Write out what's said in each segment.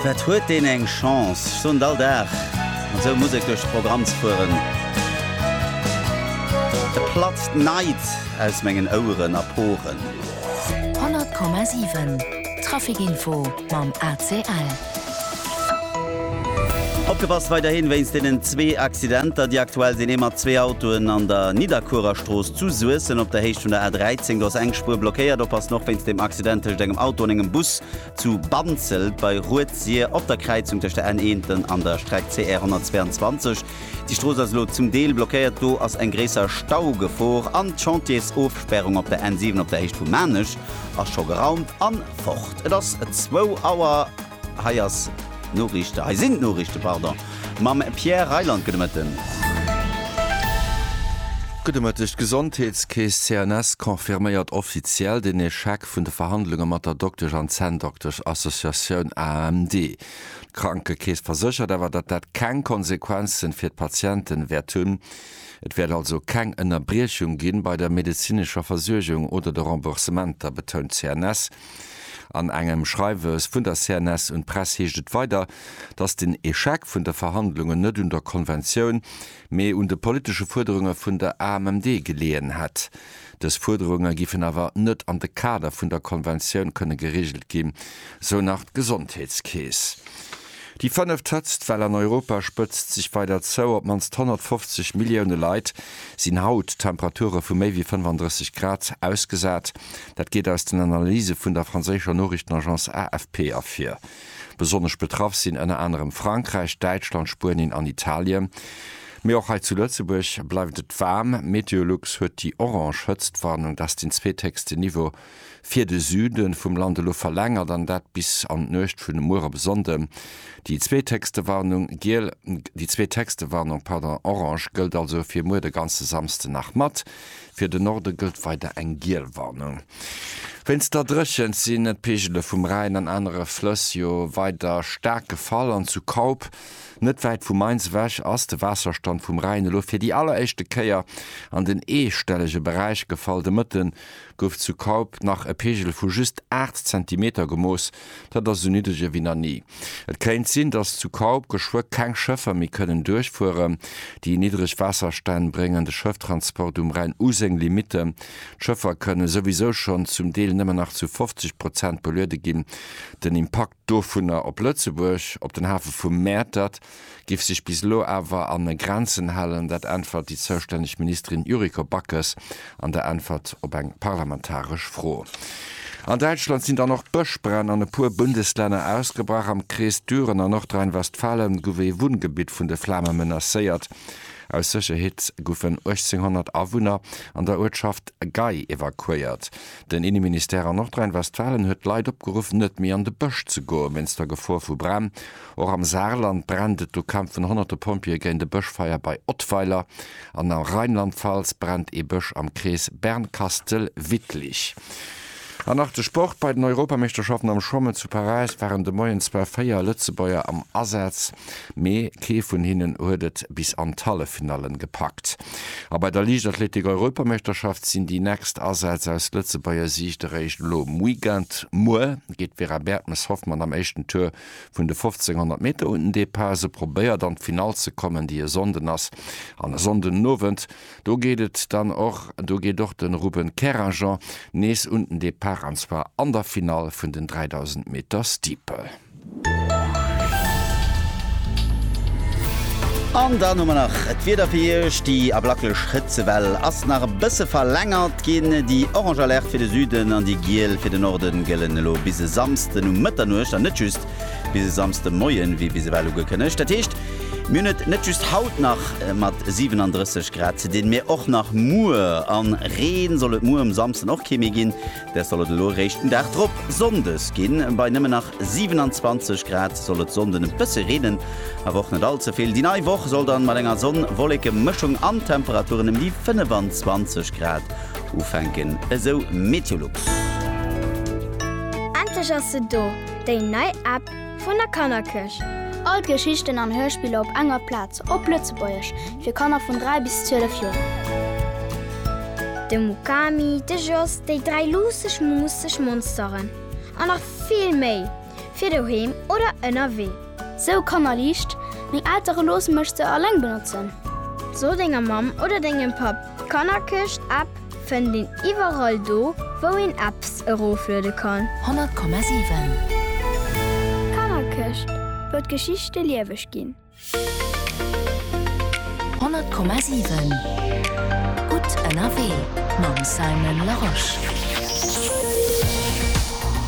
Wat huet deen eng Chance, ech soen et all Dag, mat esou Musek duerch de Programm ze fueren. E platzt neit aus mengen Oueren a Poren. 100,7 Trafic Info mam ACL. Opgepasst weiderhin wéinst deenen zwee Accidenter, déi aktuell sinn, ee mat zwee Autoen an der Nidderkuerer Strooss zu Suessem. Op der Héicht vun der A13 goss eng Spuer blockéiert. Oppassen och wéinst deem Accident tëscht engem Auto an engem Bus zu Banzelt bei Rued-Sir op der Kräizung tëscht der N1 an der Streck CR 122. Déi Strooss ass elo zum Deel blockéiert, do ass eng gréisser Staugefor. An d'Chantiersofspärung op der N7 op der Héicht vu Maarnech ass scho geraumt an fort. Et ass zwou Auer. Hei ass d'Noriichte, hei sinn d'Noriichte, pardon, mam Pierre Reyland. Gudde Mëtten. Gudde Mëtteg. D'Gesondheetskeess CNS confirméiert offiziell den Echec vun de Verhandlunge mat der Doktesch an Zänndoktesch-Associatioun AMD. D'Krankekeess verséchert awer, datt dat keng Konsequenzen fir d'Patienten wäert hunn. Et wäert also keng Ënnerbriechung gi bei der medezinescher Versuergung oder de Remboursementer, betount d'CNS. An engem Schreiwes vun der CNS un d'Press heescht et weider, datt den Echec vun de Verhandlungen net un der Konventioun, mee un de politesche Fuerderunge vun der AMMD geleeën hätt. Dës Fuerderunge giffen awer net an de Kader vun der Konventioun kënne gereegelt ginn, sou nach d'Gesondheetskeess. Déi fënneft Hëtztwell an Europa spëtzt sech weider zou. Op d'mannst 150 Millioune Leit sinn haut Temperature vu méi wéi 35 Grad ausgesat. Dat geet aus den Analyse vun der franséischer Noriichtenagence AFP ervir. Besonnesch betraff sinn ënner anerem Frankräich, Däitschland, Spuenien an Italien. Mee och hei zu Lëtzebuerg bleift et waarm. Meteolux huet déi orange Hëtztwarnung, dat ass den zweethéchsten Niveau, fir de Süde vum Land elo verlängert an dat bis an d'Nuecht vun muer op e Sonnde. Déi zweethéchste Warnung, giel, déi zweethéchste Warnung, pardon, orange, gëllt also fir muer de ganze Samsde nach mat. Fir de Norde gëllt weider eng giel Warnung wéinst der Dréchent. Sinn d'Peegele vum Rhäin an anere Flëss jo weider staark gefall an zu Kaup, net wäit vu Mainz ewech, ass de Waasserstand vum Rhäin elo fir déi alleréischte Kéier an den eestellege Beräich gefall. De Mëtte gouf zu Kaup nach e Peegel vu just 8 Zentimeter gemooss. Dat ass esou niddreg ewéi nach ni. Et kéint sinn, datt zu Kaup geschwë keng Schëffer méi kënnen duerchfueren. Déi niddreg Waasserstänn bréngen de Schëfftransport um Rhäin u seng Limitten. D'Schëffer kënne souwisou schonn zum Deel nëmmen nach zu 50 Prozent beluede ginn. Den Impakt dovunner op Lëtzebuerg, op den Hafe vu Mäertert, giff sech bis elo awer an Grenzen halen, dat äntwert déi zoustänneg Ministerin Yuriko Backes an der Äntwert op eng parlamentaresch Fro. An Däitschland sinn dann och Bëschbränn an e puer Bundeslänner ausgebrach. Am Krees Düren a Nordrhein-Westfalen guff ee Wunngebitt vun de Flame menacéiert. Aus Sécherheet guffen 1800 Awunner an der Uertschaft Gay evakuéiert. Den Inneministère an Nordrhein-Westfalen huet d'Leit opgeruff net méi an de Bësch ze goen, wéinst der Gefor vu Bränn. Och am Saarland brennt et, do kämpfen honnerte Pompjeeë géint e Bëschfeier bei Ottweiler an a Rheinland-Pfalz brennt ee Bësch am Krees Bernkastel-Wittlich. An nach de Sport, Bei den Europameeschterschaften am Schwammen zu Paräis waren de Moien zwar 4 Lëtzebuerger am Asaz, mee kee vun hinnen huet et bis an d'Halleffinallen gepackt. A bei der Liichtathletik-Europameeschterschaft sinn déi nächst Asätz aus Lëtzebuerger Siicht eréischt elo um Weekend. Muer geet d'Vera Bertmes-Hoffmann am éischten Tour Vun de 1500 Meter un den Depart se probéiert an d'Finall ze kommen, déi e Sonnden ass. An e Sonndenowend, do geet et dann och, do geet och de Ruben Kerajan nees un den Depart an zwar an der Finall vun den 3000 Meter Steeple. An dann hu mer nach d'Wieder fir Iech, déi ablaklech Hëtzewell ass nach e bësse verlängert ginn. Déi orange Alerte fir de Süden an déi giel fir de Norde gëllen elo bis e Samsden. Samsden um Mëtternuecht an net just bis e Samsde Moien, wéi bis ewell ugekënnegt. Dat heescht, mir hunn et net just haut nach mat 37 Grad ze dinn, mee och nach muer. A Reen soll et muer um Samsden och kee méi ginn, dat soll et elo eréischt den Dag drop, Sonndes, ginn. Bei nëmmen nach 27 Grad soll et Sonnden e bësse reenen, awer och net all ze vill. Déi nei Woch soll dann mat enger Sonn-Wolleke-Mëschung an d'Temperaturen ëm déi 25 Grad ufänken, esou Meteolux. Endlech ass se do, déi nei App vun der Kannerkëscht! All d'Geschichten an Hörspiller op enger Plaz, op Lëtzebuergesch, fir Kanner vun 3 bis 12 Joer. De Mukami, de Jos, déi dräi luusseg, muusseg Monsteren an nach vill méi! fir doheem oder ënnerwee. Sou Kannerliicht, Meng Eltere loosse mech se alleng benotzen. So denger Mamm oder dengem Papp, d'Kannerkëscht App fënnt een iwwerall do, wou een Apps erofluede kann. 100,7. D'Kannerkëscht, wou d'Geschichte lieweg ginn. 100,7 Gutt ënnerwee mam Simon Larosche.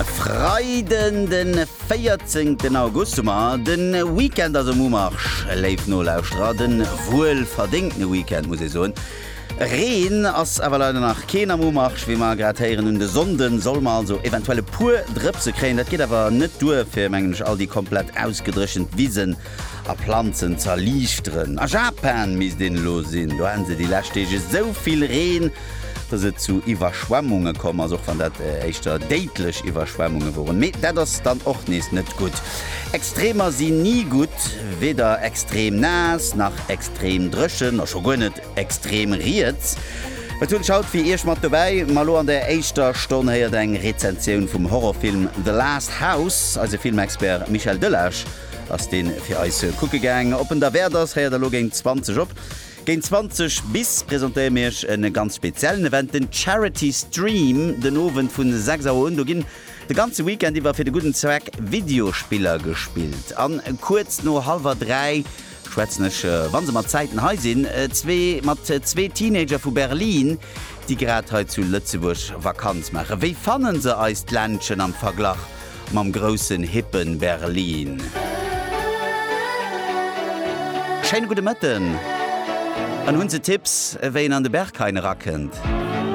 E Freiden de 14 August hu mer. De Weekend ass um Umarsch, léif Nolauschterer. De wuelverdéngtene Weekend, muss ee soen. Reen ass awer leider nach keen am Umarsch, wéi mer grad héieren. Un de Sonnde solle mer also eventuell e puer Drëpse kréien. Dat geet awer net duer, fir, mengen ech, all déi komplett ausgedréchent Wisen a Planzen ze erliichteren. A Japan misst een elo sinn. Do haten se déi lescht Deeg esou vill Reen, dass et zu Iwwerschwemmunge komm ass, och wann dat éischter déidlech Iwwerschwemmunge woren. Mee dat ass dann och nees net gutt. Extremer si ni gutt, weder extrem naass nach extrem dréchen a scho guer net extrem riets. Et hunn ech haut fir Iech mat dobäi. Ma lo an der éischter Stonn héiert eng Rezensioun vum Horrorfilm The Last House. Eise Filmexpert Michel Delage ass deen fir eis kucke gaang. Op en derwäert ass, héiert der lo géint 20 op. Géint 20 bis presentéiere mir Iech e ganz speziellen Event, den Charity Stream den Owend vun 6 Auer un. Do ginn de ganze Weekend iwwer fir de gudden Zweck Videospiller gespillt. An kuerz no hallwer 3 Schwätzen ech, wa se mat Zäiten hei sinn, zwee mat zwee Teenager vu Berlin, déi grad hei zu Lëtzebuerg Vakanz maachen. Wéi fanne se eist Ländchen am Verglach mam groussen, hippen Berlin? Schéine gudde Mëtten! An hunn se Tipps, wéi een an de Berg heien erakënnt?